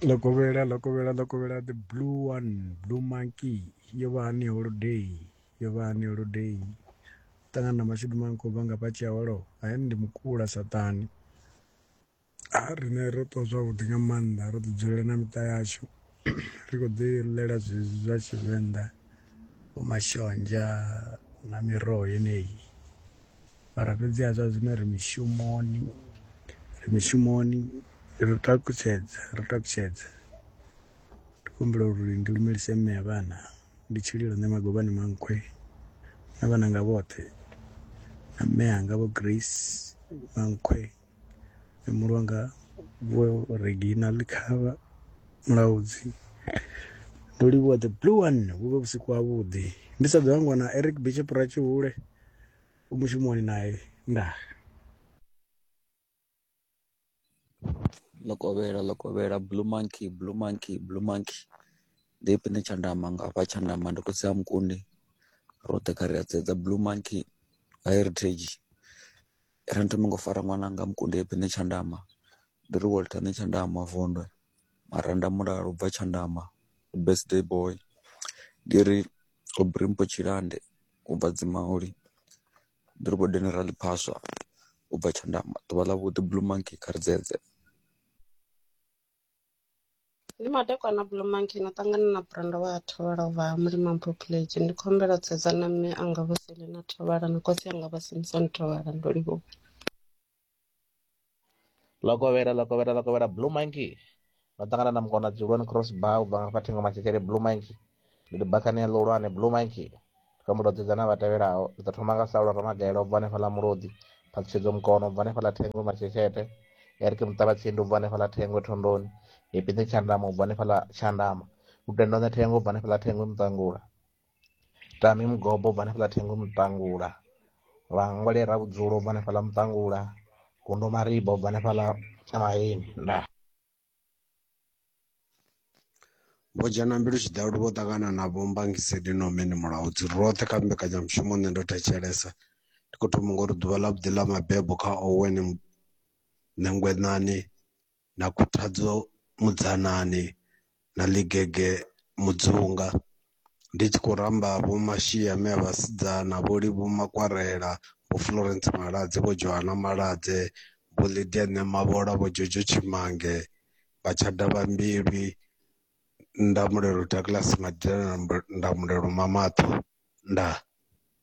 ḽo kovhela ḽo kovhela ḽo kovhela the blue one blue monkey yo vha hani holiday yo vha hani holiday ṱangana na mashudu maṅwe khou bva nga fha tshiya holo hayani ndi mukula saṱhane a riṋe ro ṱuwa zwavhuḓi nga maanḓa ro ḓi dzulela na miṱa yashu. ri khou ḓi ḽela zwezwi zwa tshivenḓa vho mashonzha na miroho yeneyi mara fhedziha zwa zwino ri mishumoni ri mishumoni ri takutshedza ri takutshedza ndi kumbula uri ndi lumelise mme ya vhana ndi tshililo nṋe magobani mankhwe na vhananga vhoṱhe na mme anga vho grace mankhwe muhulu wanga vho reginal khavha mulaudzi ndo livhuwa the blue one vhu vhe vhusiku ha vhuḓi ndi sa ḓo hangwa na eric bishop ratshihule u mushumoni naye ndaa lokovhela lokovhela blue monkey blue monkey blue monkey ndi ipine tshandama nga hafha tshandama ndi khotsi ha mukundi roṱhe kha ri a sedza blue monkey heritage Ri ndo no ngo fara ṅwananga Mukundeṱi ṋe Tshandama ndi ri Walter ṋe Tshandama Vondwe maranda mulalo bva Tshandama birthday boy ndi ri Aubrey mpho Tshilande u bva dzi mauli ndi ri vho dinera ḽiphaswa u bva Tshandama ḓuvha ḽa vhuḓi blue monkey kha ri dzedze. ndi madekwana blue monkey na ṱangana na brenda wa thovhala u vha mulima mpopulage ndi khou humbela u sedza na mme anga vho selina thovhala na khotsi anga vha simson thovhala ndo livhuwa lokovhela lokovhela lokovhela blue monkey no ṱangana na mukona dzuloni cross bar u bva nga fha thingo matshekele blue monkey ndi ri bakhanea ḽihulwane blue mike kha mulodzi dzana vha tevhelaho ri ḓo thoma nga saulo ramagaela u bva hanefha ḽa mulodzi phaṱhutshedzo mukono u bva hanefha ḽa thengwe matsheshete eric muṱavhatsindi u bva hanefha ḽa thengwe thondoni hepini tshandama u bva hanefha ḽa tshandama lutendone thengwe u bva hanefha ḽa thengwe muṱangula tami mugobo u bva hanefha ḽa thengwe muṱangula vhangwale ra vhudzulo u bva hanefha ḽa muṱangula gundo mariba u bva hanefha ḽa maheni ndaa Vho Dzhena Mbilu Tshidalu vho ṱangana na Vho Mbangiseni Nomeni Mulaudzi roṱhe kha mbekanyamushumo Nṋe Ndo Thetshelesa. Ndi khou thoma nga u ri ḓuvha ḽa vhuḓi ḽa mabebo kha Owen Nengwenani na Khuthadzo Mudzanani na Ligege Mudzunga. ndi tshi khou ramba vho Mashia Miya Vhasidzana, Vho Livhuwa Makwarela, Vho Florence Maladze, Vho Johanna Maladze, Vho Lydia Ṋemavhola, Vho Jojo Tshimange, Vha Tshada Vha Mbilwi, Ndamulelo Douglas Madida na Ndamulelo Mamathu. Ndaa.